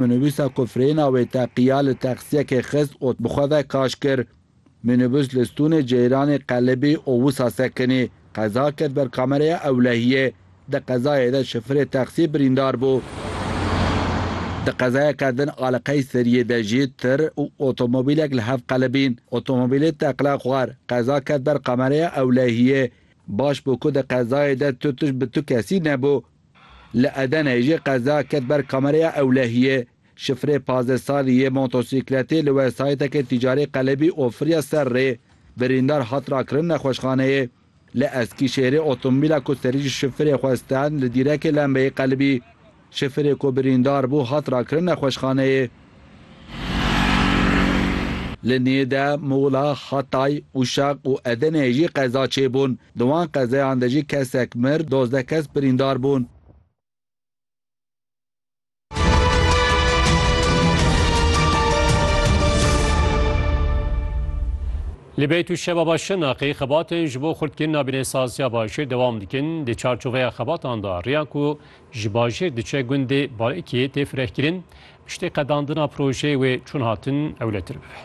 Minibûsa ku frêna wê teqiya li texsiyekê xist û bi xwe ve kaş kir. Minibûs li stûnê ceyranê qelibî û wisa sekinî qeza ket ber kamereya ewlehiyê. Di qezayê de şifirê texsiyê birîndar bû. Di qezayeke din a li Qeyseriyê de jî tir û otomobîlek li hev qelibîn. Otomobîlê teqla xwar, qeza ket ber kamereya ewlehiyê. Baş bû ku di qezayê de tu tişt bi tu kesî nebû. Li Edeneyê jî qeza ket ber kamereya ewlehiyê. Şifrê pazdeh salî yê motosîkletê li wesayîtekê tîcarî qelebî ofiriya ser rê. Birîndar hat rakirin nexweşxaneyê. Li Eskîşehîrê otomobîla ku serî ji şifrê xwe stend li dîrekê lembeyê qelibî. Şifrê ku birîndar bû hat rakirin nexweşxaneyê. Li Nîde, Muğla, Hatay, Uşak û Edeneyê jî qeza çêbûn. Di wan qezeyan de jî kesek mir, dozdeh kes birîndar bûn. Li Beyt û Şebaba Şirnexê xebatên ji bo xurtkirina binêsaziya Başûr dewam dikin. Di çarçoveya xebatan de riya ku Ji bajêr diçe gundê Balikiyê tê firehkirin, piştî qedandina projeyê wê çûn hatin ewletir bibe.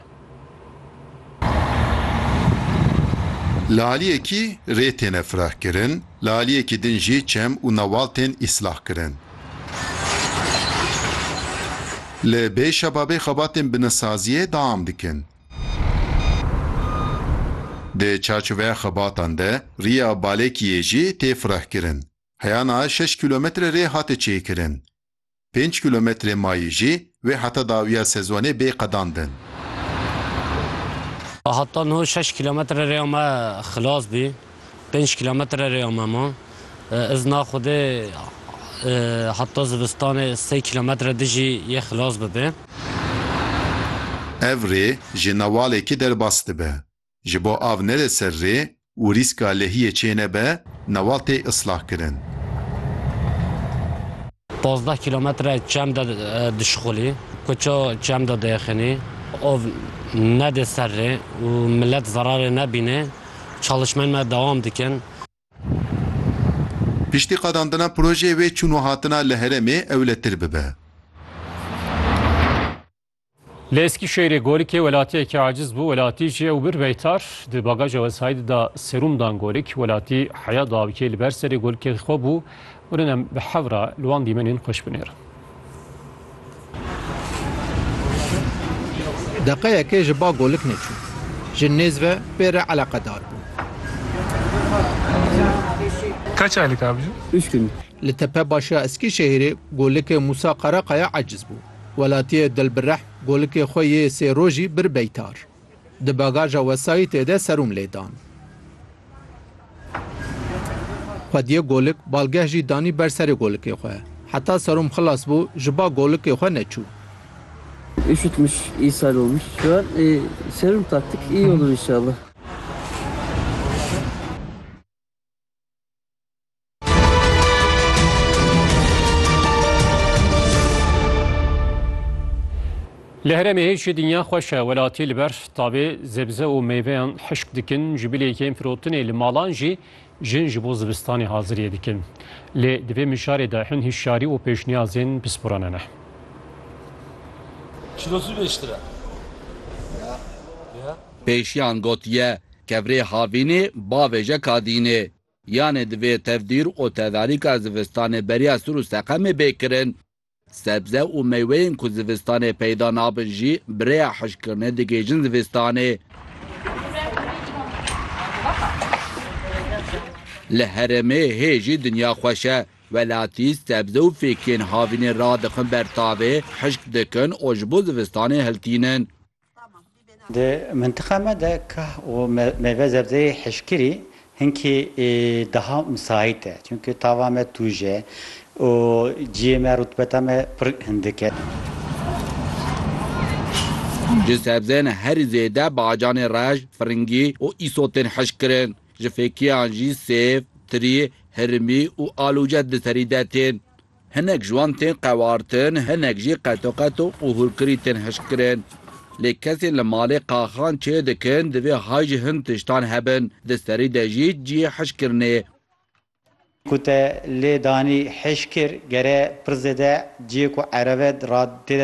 Li aliyekî rê têne firehkirin, li aliyekî din jî çem û newal tên îslahkirin. Li bê şebabê xebatên binisaziyê deam dikin. Di çarçoveya xebatan de riya Balikiyê jî tê firehkirin. Heya niha şeş kîlometre rê hate çêkirin. Pênc kîlometrê mayî jî wê heta dawiya sezonê bê qedandin. Heta niha şeş kîlometre rêya me xilas bî. Pênc kîlometre rêya me ma. Ez na xwedê heta zivistanê sey kîlometre din jî yê xilas bibê. Ev rê ji Newalekî derbas dibe. Ji bo av nede ser rê û rîska lehiyê çênebe newatê islah kirin. Pazdeh kîlometre çem de dişixulî, kuço çem de diexinî, av nedê ser rê û milet zerarê nebînê çalişmên me dewam dikin. Piştî qadandina projeyê wê çûn û hatina li heremê ewletir bibe. Li Eskîşehîrê gorikê welatiyekî aciz bû, welatî jî ew bir beytar di bagaja wesayîdê de serûm dan gorik. Welatî heya dawikê li ber serê gorikê xwe bû. Urin em bi hevra li wan dîmenên xweş binêrin. Deqeyekê ji ba golik neçû. Ji nêz ve pê re eleqedar bû. Kaç aylık abicim? Üç gün. Li tepe başa Eskîşehîrê golikê Musa Karakaya aciz bû. Welatiyê Dilbirehm golikê xwe yê sê rojî bir Beytar. Di bagaja wesayîtê de serum lê dan. Xwediyê golik balgeh jî danî ber serê golikê xwe. Heta serum xilas bû ji ba golikê xwe neçû. Üşütmüş, ishal olmuş. Şu an e, serum taktık. İyi olur inşallah. Li herêmê hêjî dinya xweş e welatî li ber tavê zebze û meyveyan hişk dikin ji bilê yên firotinê li malan jî jin ji bo zivistanê haziriyê dikin. Lê di vê mijarê de hin hişyarî û pêşniyazên pisporan hene. Pêşiyan gotiye, Kevrê havînê bavêje kadînê. Yanê di vê tevdîr û tedarîka zivistanê beriya sir û seqemê bê kirin. Sebze û meyweyên ku zivistanê peyda nabin jî bi rêya hişkkirinê digihîjin zivistanê. Li herêmê hê jî dinya xweş e. Welatî sebze û fêkiyên havînê radixin ber tavê, hişk dikin û ji bo zivistanê hiltînin. Di mintiqa me de kah û meyve zebzeyê hişkirî hinkî daha misait e. Çimkî tava me tûj e û ciyê me rutbeta me pir hindik e. Ji sebzên herî zêde bacanê reş, firingî û îsot tên hişkirin. Ji fêkiyan jî sêv, tirî, hirimî û alûce di serî de tên. Hinek ji wan tên qewartin, hinek jî qetoqeto û hûrkirî tên hişkkirin. Lê kesên li malê qaxan çê dikin divê hay ji hin tiştan hebin, di serî de jî cihê hişkkirinê. Ku te lê danî hişkir gere pir zêde cihê ku erebe ra tê de